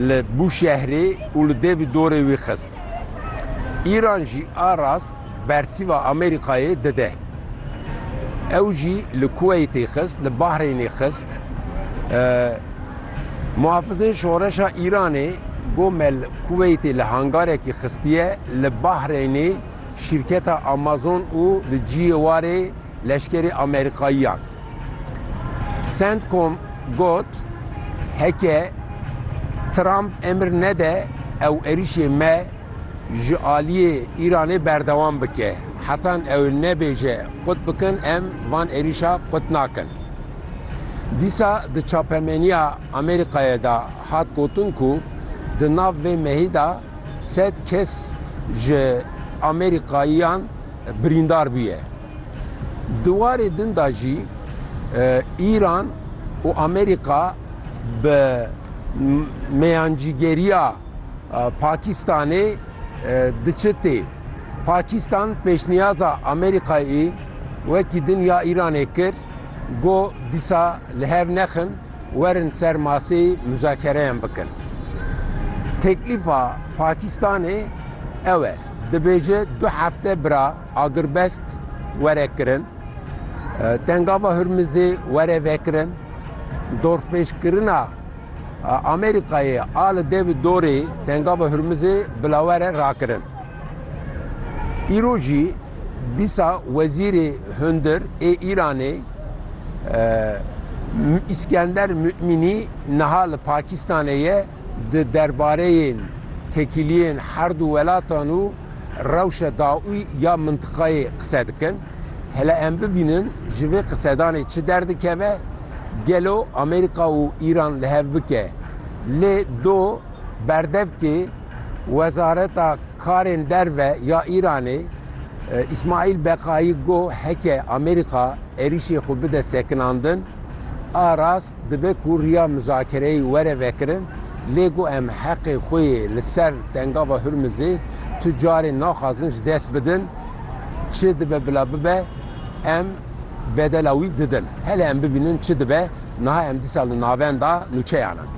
li Bûşehrê û li devî dorê wî xist. Îran jî a rast bersîva Amerîkayê dide. Ew jî li Kuweytê xist, li Bahreynê xist. Muhafizên Şoreşa Îranê gomel Kuweytê li hangarekî xistiye, li Bahreynê, Şîrketa Amazon û di ciyê warê leşkerê Amerîkayiyan. Centcom got, Heke Trump emir nede ew êrîşê me ji aliyê Îranê berdewam bike, hetan ew nebêje qut bikin em van êrîşa qut nakin. Dîsa di çapemeniya Amerîkayê de hat gotin ku di nav vê mehî de, Sed kes ji Amerîkayiyan birîndar bûye. Di warê din de jî Îran û Amerîka bi meyancîgeriya Pakîstanê diçi tê. Pakîstan pêşniyaza Amerîkayê wekî din ya Îranê kir, got dîsa li hev nexin. Werin ser masê muzakereyan bikin. Teklîfa Pakîstanê ew e, dibêje du hefte bira agirbest were kirin, Tengava Hurmizê were vekirin, dorpêçkirina Amerîkayê a li dev û dorê Tengava Hurmizê bilawere rakirin. Îro jî dîsa Wezîrê Hundir ê Îranê Îskender Mu'minî niha li Pakistanê ye di derbareyên tekîliyên herdu welatan û rewşa dawî ya mintiqayê qise dikin. Hele em bibînin ji vê qisedanê çi derdikeve, gelo Amerîka û Îran li hev bike lê do berdevkê, Wezareta Karên Derve ya Îranê Îsmaîl Beqayî got, Heke Amerîka êrîşê xwe bide sekinandin, a rast dibe ku riya muzakereyê were vekirin, lê got em heqê xwe yê li ser Tengava Hurmizê tu carê naxwazin ji dest bidin, çi dibe bila bibe em bedela wî didin. Hele em bibînin çi dibe, niha em dîsa li navenda nûçeyan in.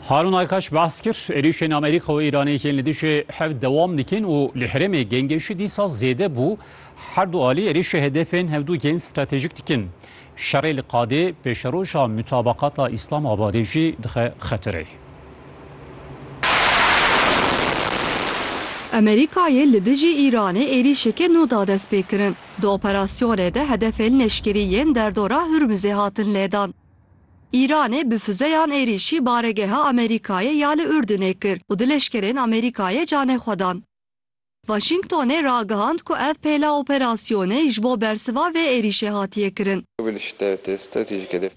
Harun Aykaş behs kir, êrîşên Amerîka û Îranê yên li dijî hev dewam dikin û li herêmê gengêşî dîsa zêde bû, her du alî êrîşê hedefên hevdu yên stratejîk dikin. Şerê li qadê pêşeroja mutabaqata Îslamabadê jî dixe xetereyê. Amerîkayê li dijî Îranê êrîşeke nû da destpêkirin. Di operasyonê de hedefên leşkerî yên derdora Hurmuzê hatin lêdan. Îranê bi fuzeyan êrîşî baregeha Amerîkayê ya li Urdunê kir û du leşkerên Amerîkayê canê xwe dan. Waşîngtonê ragihand ku ev pêla operasyonê ji bo bersiva vê êrîşê hatiye kirin.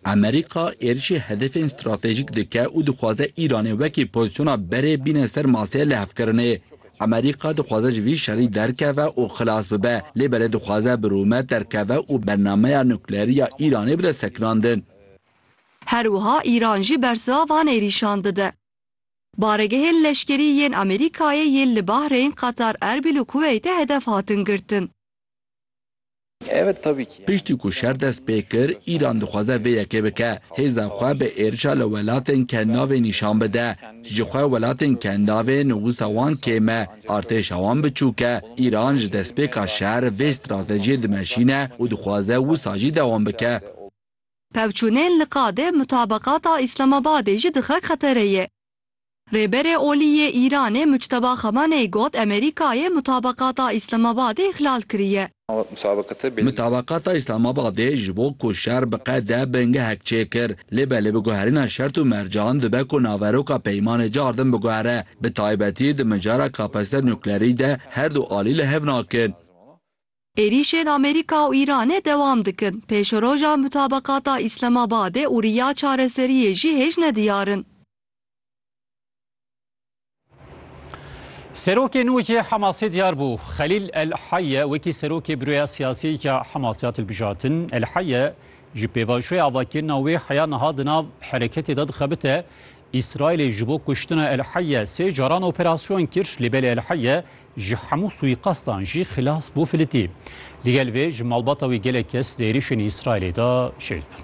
Amerîka êrîşê hedefên stratejîk dike û dixwaze Îranê wekî pozisyona berê bîne ser maseyê lihevkirinê. Amerîka dixwaze ji vî şerî derkeve û xilas bibe, lê belê dixwaze bi rûmet derkeve û bernameya nukleerî ya Îranê bide sekinandin. Her wiha Îran jî bersiva van êrîşan dide. Baregehên leşkerî yên Amerîkayê yên li Bahreyn, Qatar, Erbîl û Kuweytê hedef hatin girtin. Evet tabii ki. Piştî ku şer dest pê kir, Îran dixwaze vê yekê bike, hêza xwe bi êrişa li welatên kendavê nîşan bide. Ji xwe welatên kendavê nivûsa wan kêm e, artêşa wan biçûk e. Îran ji destpêka şer vê stratejiyê dimeşîne û dixwaze wisa jî dewam bike. Pevçûnên li qadê mutabeqata Îslamabadê jî dixe xetereyê. Rêberê Olî yê Îranê Muçteba Xamenei got Amerîkayê Mutabakata Îslamabadê îxlal kiriye. Mutabakata Îslamabadê ji bo ku şer biqede bingehek çêkir. Lê belê bi guherîna şert û mercan dibe ku naveroka peymanê car din biguhere. Bi taybetî di mijara kapasite nuklerî de her du alî li hev nakin. Êrîşên Amerîka û Îranê dewam dikin, pêşeroja mutabeqata Îslamabadê û riya çareseriyê jî hêj ne diyar in. Serokê nû yê Hamasê diyar bû. Xelîl El Heyye wekî serokê Buroya Siyasî ya Hamasê hat hilbijartin. El Heyye ji pêvajoya avakirina wê heya niha di nav hereketê de dixebite. Îsraîlê ji bo kuştina El Heyê sê caran operasyon kir, lê belê El Heyê ji hemû suîqastan jî xilas bû filitî. Li gel vê ji malbata wî gelek kes di êrîşên Îsraîlê de şehîd bûn.